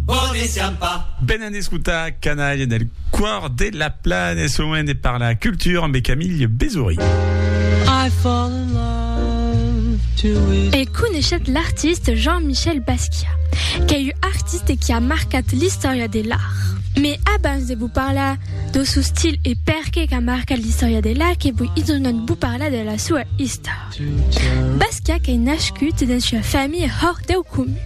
Bòne siam pas. Venen d'escotar Canalha del còr de la plana e soen de parlar cultura ambe Camille Bezory. E coneishetz l'artiste Jean-Michel Basquiat, qu'ei un artiste qui a marcat l'istòria de l'art. Mes abans de vos parlar do sou stil e perqué qu'a marcat l'istòria de l'art que voi isognant vos parlar de la soa istòria. Basca qu'ei nascut dens ua familha hòr deu comun.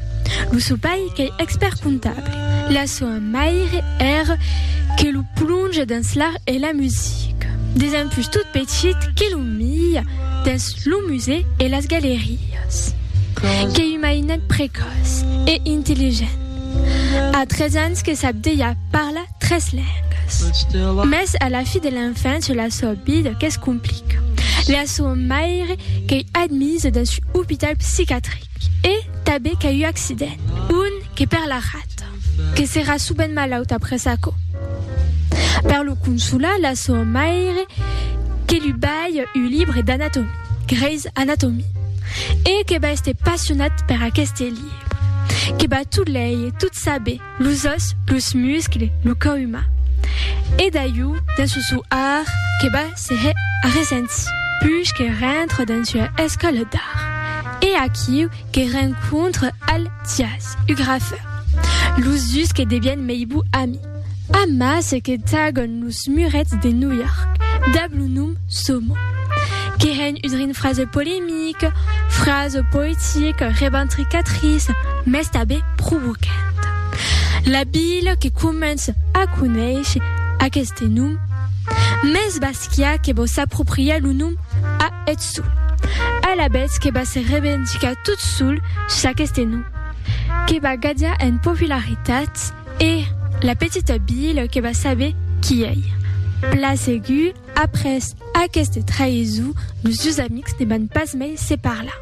Lo sò pair qu'ei expèrt comptable. La soa maire ère que lo plonge dens l'art e la musica. Desempús tot petit que lo mia dens lo musèu e las galerias. Qu'ei un mainet precòç e intelligent. A tres ans que sap dejà parlar Tres lengas. Mès a la fi de l'enfància la sua vida que's complica. La sua maire qu'ei admisa dins un opital psicatric e tanben qu'a un accident, un que per la rata, que serà subent malauta après aquò. Per lo consolar, la sua maire que lu balha un libre d'anatomia, Grey's Anatomy, e que va èster passionat per aqueste libre, que va tot leir, tot saber, los òs, los muscles, lo cò umà. E d'aiu, dins lo sou art, que va se hè arresents. Puish que rentre dins ua escòla d'art, e aquiu que rencontre al Thias, u grafeur. Los dus que devièn mei bou ami. Amas que tagon los murets de New York, dab lo nom. Som. Que hèn udre un frase polemic, frase poetic, reventricatrice, mès tanben provocant. La vila que comence a conéisher aqueste nom, mès Basquiat que vò s'apropriar lo nom a eth sol, alavetz que va se revendicar tot sol sus aqueste nom, que va gadjar en popularitat e la petita vila que va saber qui ei. Pla segur. Après aqueste traïsou, los dus amics ne van pas mai se parlar.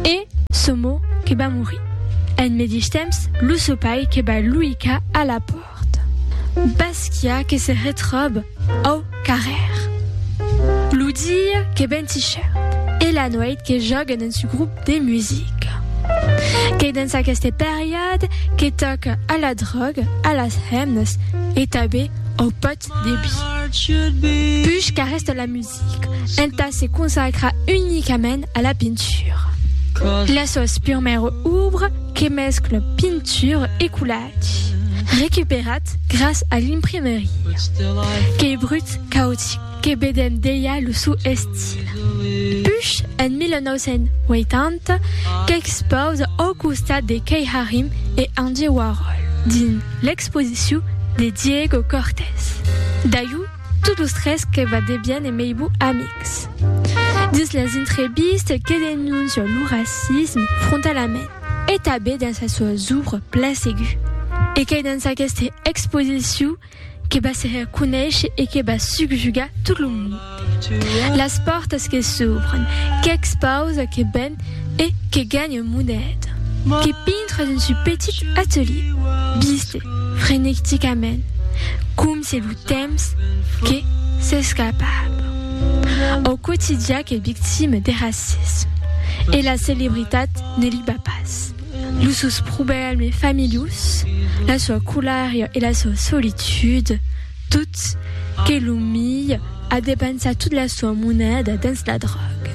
E Somo que va morir. En medish temps, lo so pair que va luicar a la pòrta. Basquiat que se retròb au carrèr. Lo dia que ven tichèr e la noit que jòguen en su grop de musica. Qu'ei dens aqueste periòde que tòca a la dròga, a las hemnas e tanben au pòt Debi. Puish qu'arrèsta la music entà se consacrar unicament a la pintura. La sòs purmèra obra que mescla pintura e collage, recuperat gras a l'imprimeria, qu'ei brut cautic que vedèm dejà lo sou estil. Puish en 1980 qu'expausa au costat de Kei Harim e Andy Warhol dins l'ex. Exposiciu de Diego Cortés. Daiu tot los tres que va debian e meibu amics. Dins las intrebistes que denoncia lo racisme frontalament e tabé dins las soas obras pla segu. E qu'ei dins aqueste exposiciu que va se her conéisher e que va subjugar tot lo monde. Las pòrtas que s'ubren, qu'ex pausa que ben e que ganha moneda, que pintra dins su petit atelier, biste frenecticament, com se lo temps que s'escapava. Au quotidià qu'es victima de racisme e la celebritat ne li ba pas. Los seus problèmes familius, la sua colèria e la sua solitude, Tot, que lo milh a depensat tot la soa moneda dens la dròga.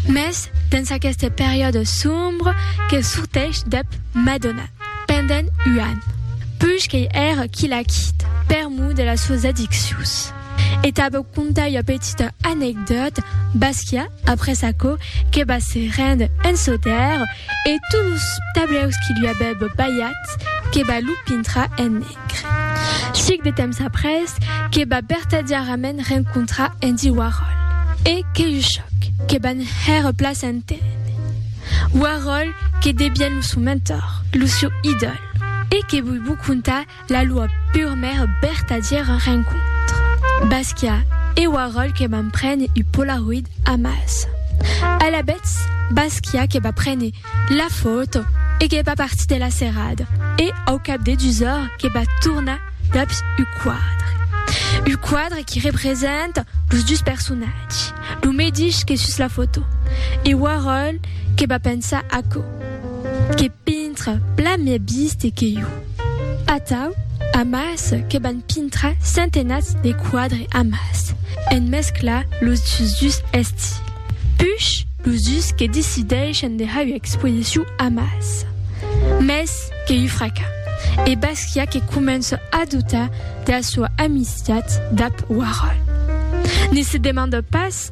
Mès dens aqueste periòde sombre que sorteish dep Madonna pendent un an, puish qu'ei era qui l'a quita per mor de las soas addiccions. E tabeu contar ua petita anecdòta, Basquiat, après aquò, que va se rénder en Sautèrre, e tots los tableus qui lui avèbe balhats, que va lo pintrar en negre. Sic de temps après que va vertadièrament rencontrar Andy Warhol e qu'ei lo chòc que van hèr a plaça entenh Warhol que devien lo sò mentor, lo sò idòl e que voi vos contar la loa purmèra vertadièra rencontra. Basquiat e Warhol que van préner u polaroid amassa. Alavetz, Basquiat que va préner. La fòto e qu'es pas partit de la serrada e au cap de dus ores que va tornar daps u quadre. U quadre qui representa los dus personatges, lo medish que sus la fòto e Warhol que va pensar aquò, que pintre plan mieu biste que jo. Atau, amàs, que van pintra centenats de quadres amàs, en mesclar los dus estils. Puish, los dus que decideixan de har ua exposicion amàs. Mès que ua fraca. E Basquiat que comença a doutar de la soa amistat dab Warhol. Ne se demanda pas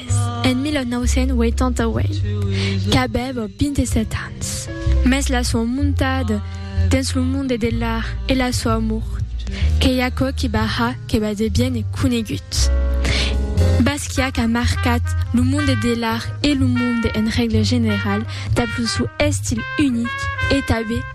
Res, en 1988, qu'avèva 27 ans, mès la soa montada dens lo monde de l'art e la soa amor qu'ei aquò qui va har que va de bien e conegut. Basquiat a marcat lo monde de l'art e lo monde en règle general dab lo sou estil unic e tanben